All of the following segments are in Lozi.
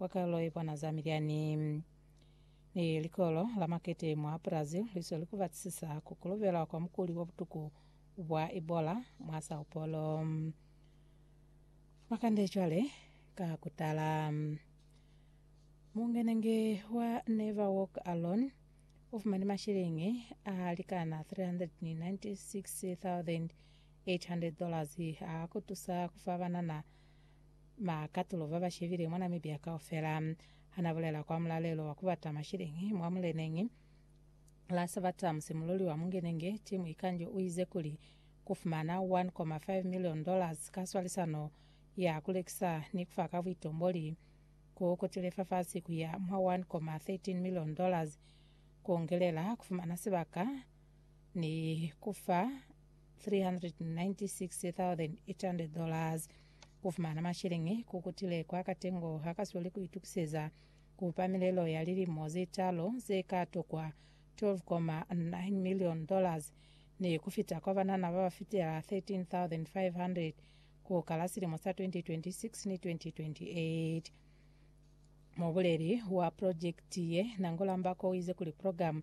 wa kalo ye pwana za milyani ni likolo la makete mwa Brazil li sweli ku batisisa ku kolobela kwa mukuli wa butuku bwa Ebola mwa Sao Paulo. Makande cwale ka ku tala. Mungenenge wa Never Walk Alone u fumani mashilingi a likana 396,800 dollars a ku tusa ku fa banana Ba katulo ba ba shebile mwa Namibia kaufela ha na bulela kwa mulalelo wa ku bata masheleñi mwa muleneñi la Sabata musimululi wa mungenenge, Tim Ikanjo u ize kuli, Ku fumana $1.5 million ka swalisano ya ku lekisa ni ku fa ka buitomboli ku kutile fafasi ku ya mwa $1.13 million ku ngelela ku fumana sibaka ni ku fa $396,800 ku fumana masheleñi ku kutile kwa katengo ha kasweli ku itukiseza ku pa milelo ya lilimo ze talu ze ka tokwa $12.9 million ni ku fita kwa banana ba ba fitela 13,500 ku kala silimo sa 2026 ni 2028. Mubuleli wa projekiti ye, Nangula Mbako, u ize kuli progamu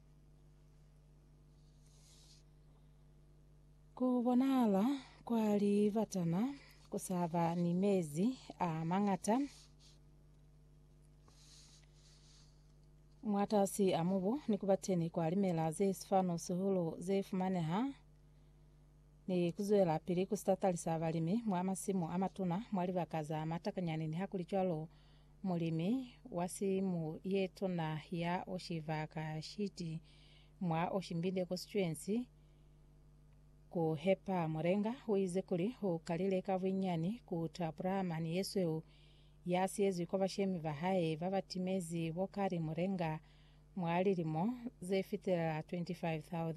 Ku bonahala kwa libatana ku sa ba ni mezi a mañata mwatasi a mubu ni ku ba teni kwa limela ze sifanu-sihulu ze fumaneha ni ku zwelapili ku sitatali sa balimi mwa masimu a matuna mwa libaka za matakanyani. Nihakulicwalo, Mulimi wa simu ye tuna ya oshi va ka shiti mwa oshimbile kosituensi ku hepa Murenga uize kuli u kalile ka buinyani ku tapula mani yesweu ya siyezwi kwa bashemi ba hae ba ba timezi bo kali Murenga mwa lilimo ze fitelela 25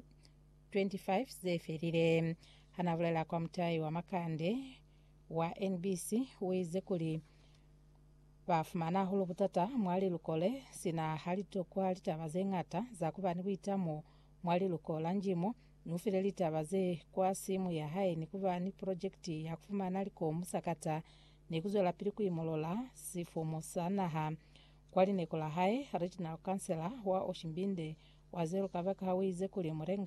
ze felile. Ha na bulela kwa mutai wa makande wa NBC uize kuli, Ba fumana hahulu butata mwa liluko le, sina ha li tokwa litaba ze ñata za kuba ni buitamo mwa liluko la Njimo. Ni ufile litaba ze kwa simu ya hae ni kuba ni projekiti ya kufumana likomu sakata ni kuzwelapili kuimolola sifumu sa naha. Kwa lineko la hae, Regional Councillor wa Oshimbinde, Wazeru Kabakaha uize kuli, Murenga,